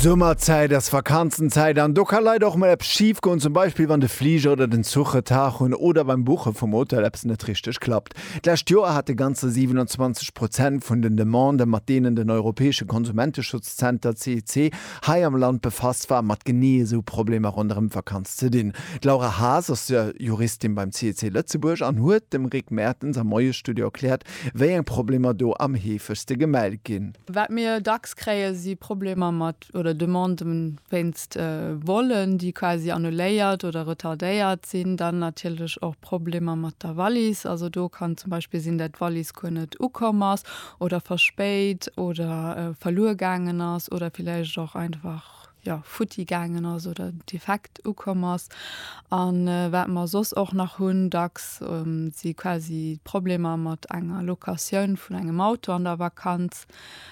Summerzäit ass Vakanzenzäit an do ka leider och mol eppes schif goen, zum Beispill wann de Fliger oder den Zuch Retard hunn oder beim Buche vum Hotel eppes net richteg klappt. D'lescht Joer hate ganzer 27 Prozent vun den Demandë mat deenen den europäesche Konsumenteschutzzenter CEC hei am Land befasst war, mat genee esou Problemer ronderëm d'Vakanz ze dinn. D'Laura Haas ass Juristin beim CEC Lëtzebuerg an huet dem Rick Mertens am Moiesstudio erkläert, Wéi eng Problemer do am heefegste gemellt ginn? Wat mir dacks kréien, si Problemer mat oder Demanden wéinst Volen, déi quasi annuléiert oder retardéiert sinn. Dann natierlech och Problemer mat der Wallis. Also do kann zum Beispill sinn, dat d'Wallis guer net ukomm ass oder verspéit oder verluer gaangen ass oder villäicht och einfach. jo futti gaangen ass oder defekt ukomm ass. An wat mer soss och nach hunn dacks si quasi Problemer mat enger Locatioun vun engem Auto an der Vakanz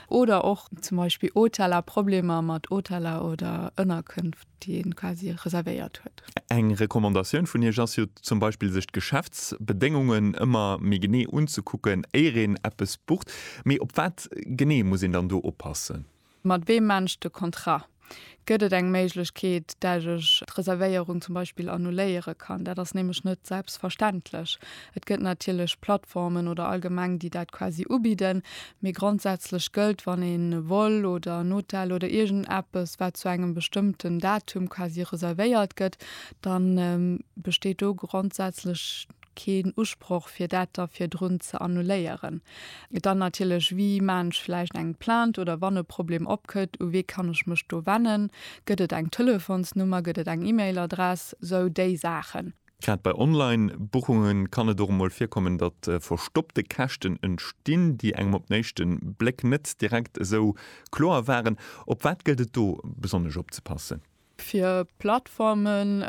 oder och zum Beispill Hoteller, Problemer mat Hoteller oder Ënnerkënft, déi ee quasi reservéiert huet. Eng Recommandatioun vun Iech ass jo zum Beispill, sech d'Geschäftsbedéngungen ëmmer méi genee unzekucken, éier een eppes bucht. Mee op wat genee muss een dann do oppassen? Mat weem mengt de Contrat? Gëtt et eng Méiglechkeet, dat ech d'Reservéierung zum Beispill annuléiere kann? Dat ass nämlech net selbstverständlech. Et gëtt natierlech Plattformen oder allgemeng, déi dat quasi ubidden, mee grondsätzlech gëllt, wann ee Vol oder en Hotel oder iergend eppes, wat zu engem bestëmmten Datum quasi reservéiert gëtt, da besteet do grondsätzlech keen Usproch fir dat da virdrun ze annuléieren. Dann natierlech, wie maachen ech vläicht eng Plainte oder wann e Problem opkëtt, u wee kann ech mech do wennen, gëtt et eng Telefonsnummer, gëtt et eng E-Mail-Adress, sou déi Saachen. Grad bei Online-Buchunge kann et och emol virkommen, datt verstoppte Käschten entstinn, déi engem op den éischte Bléck net direkt esou kloer waren. Op wat gëllt et do besonnesch opzepassen? Fir Plattformen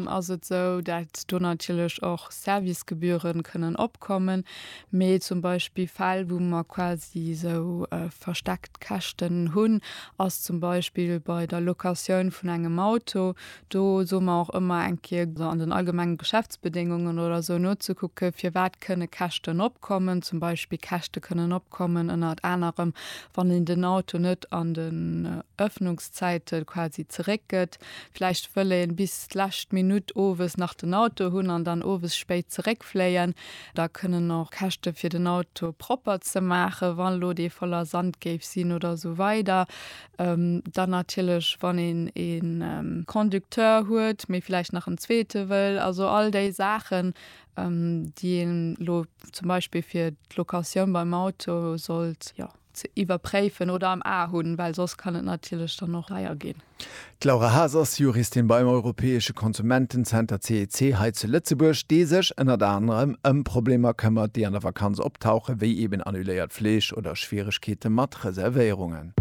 ass et esou, dat do natierlech och Servicegebühren kënnen opkommen, mee zum Beispill Fäll wou mer quasi esou versteckt Käschten hunn, ass zum Beispill bei der Locatioun vun engem Auto. Do soe mer och ëmmer eng Kéier an den allgemenge Geschäftsbedéngungen oder esou nozekucke firwat kënne Käschten opkommen. Zum Beispill Käschte kënnen opkommen ënnert anerem wann een den Auto net an den Öffnungs. d'Arbechtszäite quasi zeréckgëtt. Vläicht wëll ee bis d'lescht Minutt owes nach den Auto hunn an dann owes spéit zeréckfléien. Da kënnen och Käschte fir den Auto propper ze maachen, wa lo dee voller Sand géif sinn oder esou weider. Dann natierlech wann een e Conducteur huet, mee vläicht nach en zweete wëll. Also all déi Saachen, déi ee lo zum Beispill fir d'Locatioun beim Auto sollt, jo. ze iwwerpréifen oder am A hunn, well soss kann et natierlech dann och deier ginn. D'Laura Haas ass Juristin beim europäesche Konsumentenzenter CEC hei zu Lëtzebuerg, dee sech ënnert anerem ëm Problemer këmmert, déi an der Vakanz optauchen, wéi eben annuléiert Flich oder Schwieregkeete mat Reservéierungen.